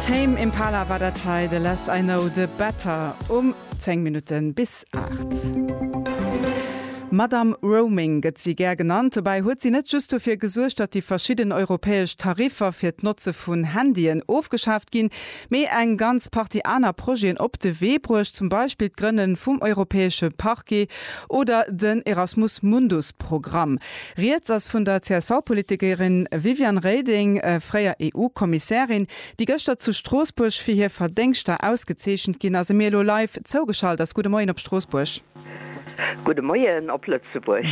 Tame Impala war dat hei, The Less I Know The Better um 10 Minutten bis 8. Madame Roaming gëtt si gär genannt. Dobäi huet si net just dofir gesuergt, datt déi verschidden europäesch Tariffer fir d'Notze vun Handyen ofgeschaaft ginn, mee eng ganz Partie aner Projeten op de Wee bruecht, zum Beispill d'Grënne vum europäesche Parquet oder den Erasmus Mundus Programm. Rieds ass vun der CSV-Politikerin Viviane Reding, fréier EU-Kommissärin, déi gëschter zu Stroossbuerg fir hir Verdéngschter ausgezeechent ginn ass a mir elo live zougeschalt ass. Gudde Moien op Stroossbuerg. Gudde Moien op Lëtzebuerg.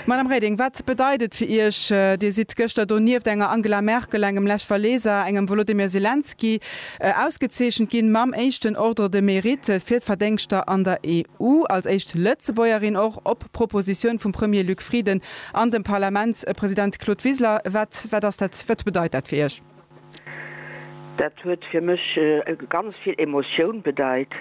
Madame Reding, wat bedeit et fir Iech? Dir sidd gëschter do nieft enger Angela Merkel, engem Lech Walesa, engem Wolodymyr Selenskyj Ausgezeechent ginn mam éischten Ordre de Mérite fir d'Verdéngschter an der EU, als éischt Lëtzebuergerin och, op Propositioun vum Premier Luc Frieden an dem Parlamentspresident Claude Wiseler. Wat wat ass dat, wat bedeit dat fir Iech? Dat huet fir mech ganz vill Emotioun bedeit,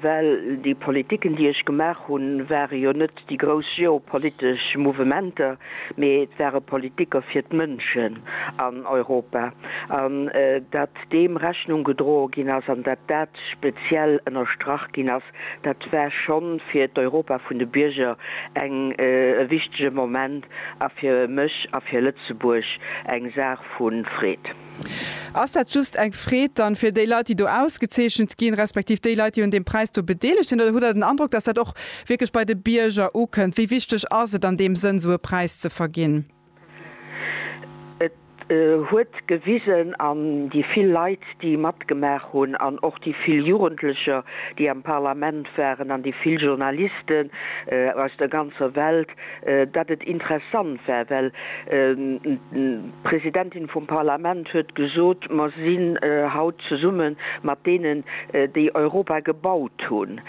well déi Politiken, déi ech gemaach hunn, ware jo net déi grouss geopolitesch Mouvementer, mee et ware Politiker fir d'Mënschen an Europa. An datt deem Rechnung gedroe ginn ass an datt dat speziell ënnerstrach ginn ass, dat war scho fir d'Europa vun de Bierger eng e wichtege Moment a fir mech a fir Lëtzebuerg eng Saach vu Freed. Ass dat just eng Freed dann fir déi Leit, déi do ausgezeechent ginn, respektiv déi Leit, déi un deem Präis do bedeelegt sinn, oder hutt Der den Androck, dass dat och wierklech bei de Bierger ukënnt? Wéi wichteg ass et an deem Sënn, esou e Präis ze verginn? Et huet gewisen, an déi vill Leit, déi matgemaach hunn, an och déi vill Jugendlecher, déi am Parlament waren, an déi vill Journalisten aus der ganzer Welt, datt et interessant wär, well d'Presidentin vum Parlament huet gesot, mer sinn haut zesumme mat deenen, déi Europa gebaut hunn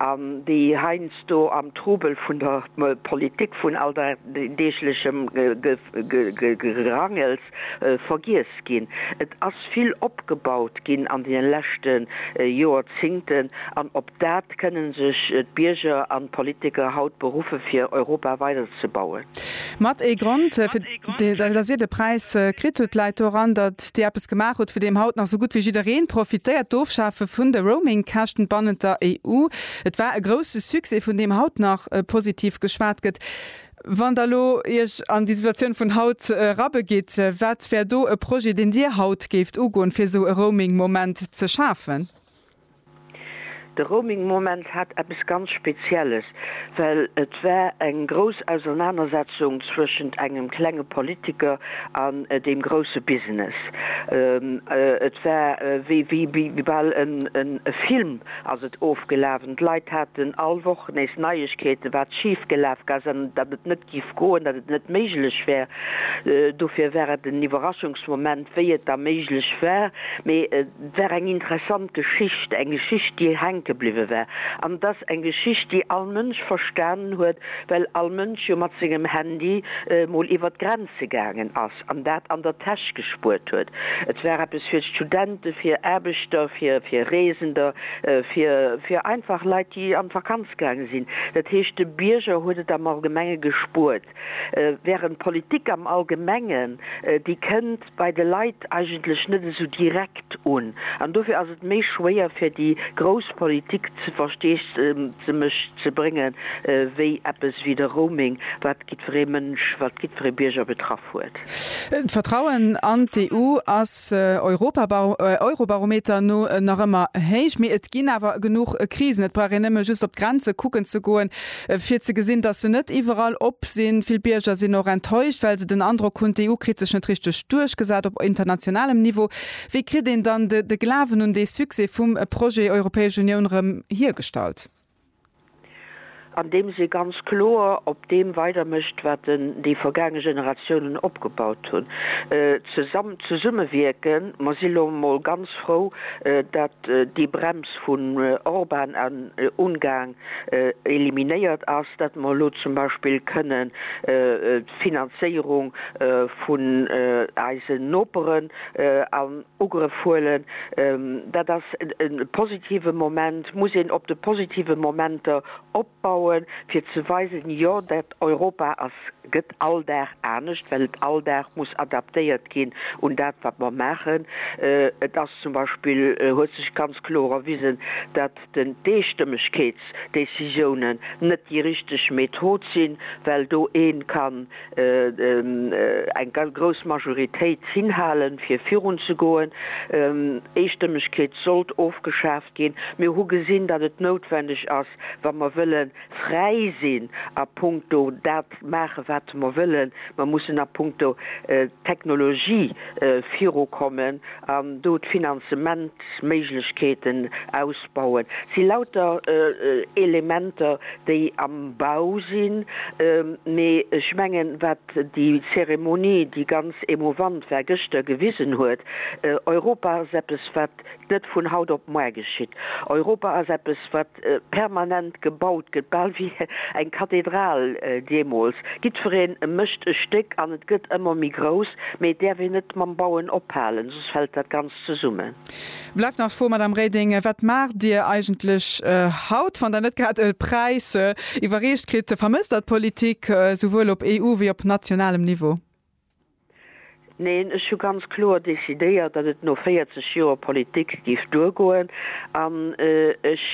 an déi heiansdo am Trubel vun der Politik, vun alldeeglechem Gerangels, vergiess ginn. Et ass vill opgebaut ginn an deene leschte Jorzingten, an op dat kënnen sech d'Bierger an d'Politiker haut beruffe fir Europa weiderzebauen. Mat ee Grond, fir datt Dir de Präis kritt hutt, läit doran, datt Dir eppes gemaach hutt, vu deem haut nach sou gutt wéi jidderee profitéiert, d'Ofschafe vun de Roaming-Käschten bannent der EU. Et war e grousse Succès, vun deem haut nach positiv geschwat gëtt. Wann Der elo Iech an déi Situatioun vun haut erabegitt, wat wär do e Projet, deen Dir haut géift ugoen, fir esou e Roaming-Moment ze schafen? De Roaming-Moment hat eppes ganz Spezielles, well et war eng grouss Ausernanersetzung zwëschent engem klenge Politiker an deem grousse Business. Et war wéi bal e Film, Ass et ofgelafen? D'Leit haten all Woch nees Neiegkeeten, wat schif gelaf ass an datt et net giff goen, datt et net méiglech wär. Dofir war et en Iwwerraschungsmoment, wéi et da méiglech war. Mee et war eng interessant Geschicht, eng Geschicht, déi hänke bliwwe war. An et ass eng Geschicht, déi all Mënsch verstanen huet, well all Mënsch jo mat sengem Handy mol iwwert d'Grenze gaangen ass. an dat an der Täsch gespuert huet. Et war eppes fir Studenten, fir Aarbechter, fir Reesender, fir einfach Leit, déi an d'Vakanz gaange sinn. Dat heescht, de Bierger huet et am Allgemenge gespuert, während d'Politik am Allgemengen, déi kënnt bei de Leit eigentlech net esou direkt. un an dofir ass et méi schwéier fir déi grouss Politik ze Versteesdemech ze bréngen, wéi eppes wéi de Roaming, wat giddferee Mënsch, wat giddferee Bierger betraff huet. D'Vertrauen an d'EU ass Eurobarometer no nach ëmmer héich, mee et ginn awer genuch Krisen. Et brauch een nëmme just op d'Grenze kucken ze goen, Fir ze gesinn, datt se net iwwerall op sinn. Vill Bierger sinn och enttäuscht, well se den Androck hunn, d'EU kritt sech net richteg duerchgesat op internationalem Niveau. Wéi kritt een dann de Glawen un dee Succès vum Projet Europäesch Unioun erëm hiergestallt? Andeems ee ganz kloer op deem weidermécht, wat déi vergaange Generatiounen opgebaut hunn. Zesammen, zesummewierken. Mer si lo mol ganz frou, datt déi Brems vun Orban an Ungarn eliminéiert ass, dat mer elo zum Beispill kënnen d'Finanzéierung vun eisen Noperen an Ugrëff huelen. Dat ass e positive Moment. Et muss een op de positive Momenter opbauen, fir ze weisen, Jo, dat Europa ass, gëtt all Dag anescht, well et all Dag muss adaptéiert ginn un dat, wat mer maachen. Et ass zum Beispill, huet sech ganz kloer erwisen, dat den d'Eestëmmegkeetsdécisiounen net déi richteg Method sinn, well do ee kann eng ganz grouss Majoritéit hinhalen, fir virunzegoen. Eestëmmegkeet sollt ofgeschaaft ginn. Mir hu gesinn, datt et noutwendeg ass, wa mer wëlle fräi sinn a puncto dat maachen, wat mer wëllen. Mer mussen a puncto Technologie virukommen an do d'Finanzement. Méiglechkeeten ausbauen. Et si lauter Elementer, déi am Bau sinn. Mee ech mengen, wat déi Zeremonie, déi ganz emouvant war, gëschter gewisen huet, Europa ass eppes, wat net vun haut op muer geschitt. Europa ass eppes, wat permanent gebaut gëtt, bal wéi eng Kathedral deemools, jiddwereen mécht e Stéck an et gëtt ëmmer méi grouss, mee et däerf een net mam Bauen ophalen, soss fält dat Ganzt zesummen. Bleift nach d'Fro, Madamm Reding, wat maacht Dir eigentlech haut, wann Der net grad e Präis iwwerreecht kritt? Vermësst Der d'Politik, souwuel op EU wéi op nationalem Niveau? Neen, ech hu ganz kloer decidéiert, datt et no 40 Joer Politik géif duergoen an ech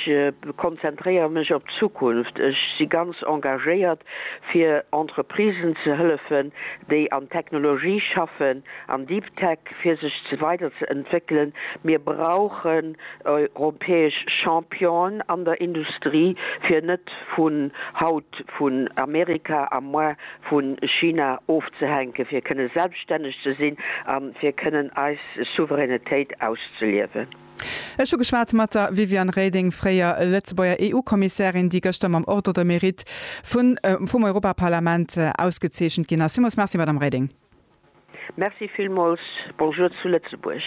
konzentréiere mech op d'Zukunft. Ech si ganz engagéiert, fir Entreprisen ze hëllefen, déi an Technologie schaffen, an Deep Tech, fir sech weider ze entwéckelen. Mir brauchen europäesch Championen an der Industrie, fir net vun haut vun Amerika a muer vu China ofzehänken, fir kënne selbstänneg ze sinn a fir kënnen eis Souveränitéit auszeliewen. Ech hu geschwat mat der Viviane Reding, fréier Lëtzebuerger EU-Kommissärin, déi gëschter mam Ordre de mérite vum Europaparlament ausgezeechent ginn ass. Villmools Merci, Madame Reding. Merci villmools. Bonjour zu Lëtzebuerg.